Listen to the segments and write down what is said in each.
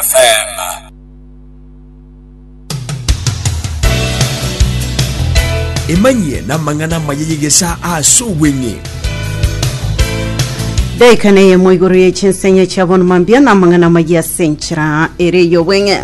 FM. emanyie namang'ana amaya y'egesaa ase obweng'e daika na eyemo igoro ye chinsenye chia bono mambia na amang'ana maya ase enchera ere yobweng'e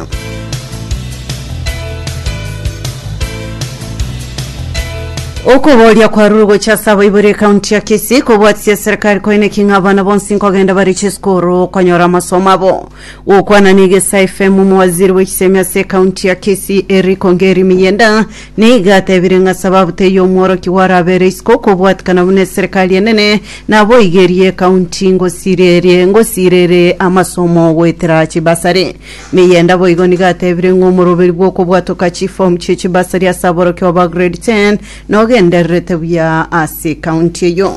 Okoboria kwarure gocha ase abaibori ekaunti ya Kisii kobwatisie eserikari koineki ng'a abana bonsi nkogenda bare chisukuru konyora amasomo abo. Gokwana na Egesa FM omowaziri bw'echisemi ase ekaunti ya Kisii Eric Ongeri Miyenda nigo atebire ng'a sababu teiyo omworokigwa arabere isiko kobwatikana buna eserikari enene naboigerie ekaunti ngosirerie ngosirere amasomo goetera chibasari. Niyenda boigo nigo atebire ng'a omoroberi bw'okobwatoka chiform chie chibasari ase aborokigwa ba grade 10 nogendererete buya ase ekaunti eyio.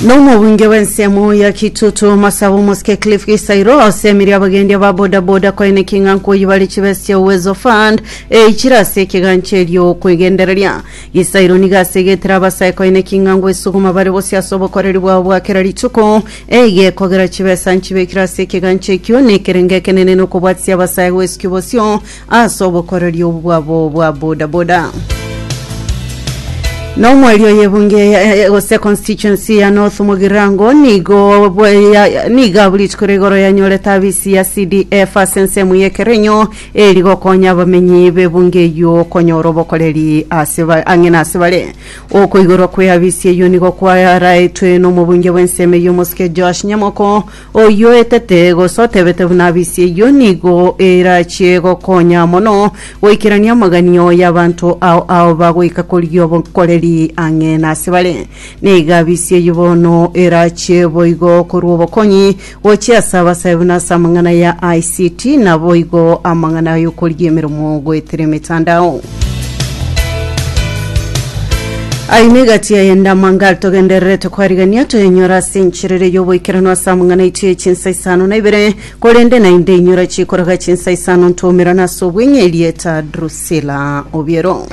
Nomobunge bw'ensemo ya Kitutu Masaba Omosike Cliff Gisairo osemeria abagendi aba bodaboda koeneki ng'a nkoyibare chibesa chia Uwezo Fund eichire ase ekegancherio kwegendereria Isairo nigo asegetire abasae koine king'ango esuguma bare bosio ase obokoreri bwabo bwa kera rituko, eye ekogera chibesa nchibekire ase ekegancha ekio, na ekerengo ekenene nokobwatisia abasae gwesukio bosio ase obokoreri obwo bwabo bwa boda boda. Na omweri oye ebunge ya- ya- ya- gose constituency ya North Mugirango nigo bwe- ya- ya- nigo abu rituko rigoro yanyorete abisi ya CDF ase ensemo ya Ekerenyo Ere rigokonya abamenyi b'ebungo eyio konyora obokoreri ase ba- ang'e nase bare. Okoigorwa kw'eabisi eyio nigo kwaraetwe n'omobunge bw'ensemo eyio omosike Joash nyamoko, oyio oetete, gose otebete buna abisi eyio nigo erachie gokonya mono goikerania amaganio y'abanto ao ao bagoika korigia obokoreri ang'e nase bare. Nigo abisi eyio bono erachie boigo korwa obokonyi Gochia ase abasae na ase amang'ana ya ICT, naboigo amang'ana y'okorigia emeremo goetera emetandao. Aye negati ya endama ngal togendererete kwarigania toyenyora ase encherere y'oboikeranu ase amang'ana aitwe ye chinsa isano na ibere, korende naende inyora chikoraga chinsa isano ntwomerana ase obweng'e erieta Drusilla Obiero.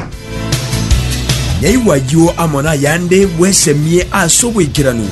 Nyaigwa ayio amo nayande bwesemie ase oboikeranu.